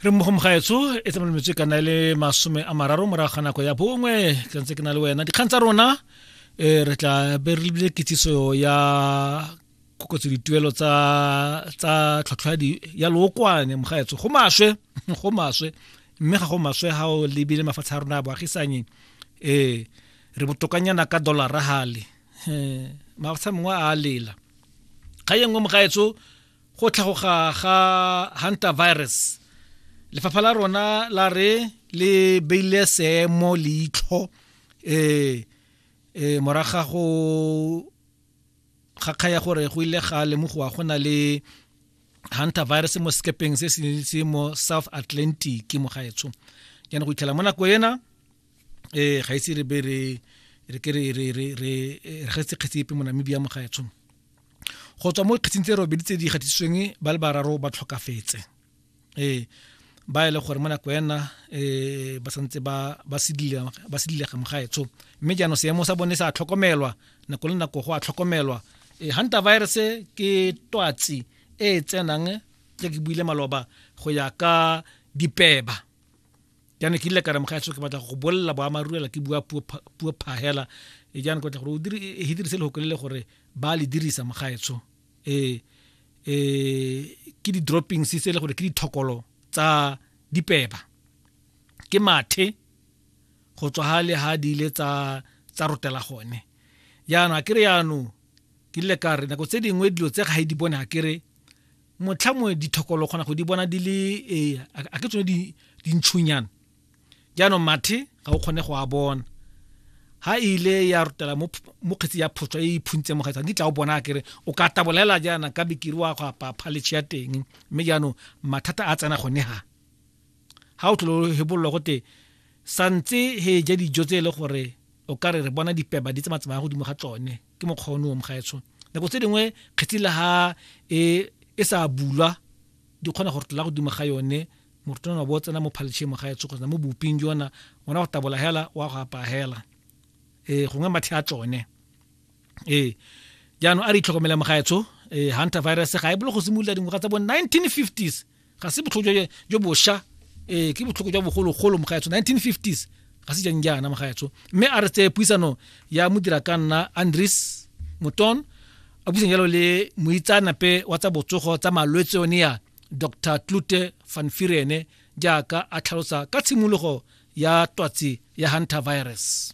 re mmogo mogaetso e tsamaya metswe kana e le masome a mararo morago ga nako ya bongwe ke ntse ke na le wena dikgang tsa rona um re tla be re lebile kitsiso ya kokotso dituelo tsa tsa tlhotlhwadi ya lookwane mogaetso go maswe go maswe mme ga go maswe ga o lebile mafatshe a rona a boagisanye um re botokanyana ka dollara gale mafatshe a mongwe a lela ga ye nngwe mogaetso go tlhagoga ga hunter virus lefapha la rona la re le beile seemo leitlho um um moraga go kgakga ya gore go ile ga lemogoa go na le hunter virus mo sekepeng se se mo south atlantic mo gaetsho jaanong go itlhela mo nako ena um ga ise re be re re ke re re re re re getse kgetse epe mo namibia mo gaetsho go tswa mo dikgetsing tse robedi tse di gatisitsweng ba le bararo ba tlhokafetse ee ba e le gore mo nako ena um ba santse ba sedilega mogaetsho mme jaanong seemo sa bone sa tlhokomelwa nako le nako go a tlhokomelwa um hunter virus ke twatsi e e tsenang tse ke buile maloba go ya ka dipeba jaana ke ile ka re mogaetsho ke batla go bolela boamaruela ke bua puo phagela e jaana kotla gore e dirise lehoko le le gore ba le dirisa mogaetsho um um ke di-droppings tse e le gore ke dithokolo tsa dipeba ke mathe go tswa ga le ga di ile tsa tsa rotela gone jaanong a kere jaanong ke ile ka re nako tse dingwe dilo tse ga e di bone a kere motlha mongwe dithokolo kgona go di bona di le ee a ke tsone dintšhunyana jaanong mathe ga o kgone go a bona ha ile ya rutela mo kgetsi ya photso e iphuntse mo gaetsang ditla o bona kere o ka tabolela jaana ka bikiri wa go apa phaletšhe ya teng mme jaanong mathata a tsena gone ha ha o tlolo hebololo gote santse he ja dijo tse e le gore o ka re re bona dipeba di tse matsamaya godimo ga tsone ke mokgwa one o mogaetsho nako tse dingwe kgetsi la ha e e sa bulwa di kgona go rotlola godimo ga yone morutwana wa bo tsena mo phaltšheng mo gaetsho kgotsa mo boping jona ona go tabola hela wa go apaya hela ee gongwe mathe a tsone ee jaanong a re itlhokomela mo gaetsho ee hunter virus ga e bolo go simolola dingwaga tsa bo 1950s ga se botlhoko jo bosha um ke botlhoko jwa bogologolo mogaetsho 1950s ga se jang jaana mogaetsho mme a re tseye puisano ya modira ka nna andres moton a buisang jalo le moitsaanape wa tsa botsogo tsa malwetse one ya dr tlute fanfirene jaaka a tlhalosa ka tshimologo ya twatsi ya hunter virus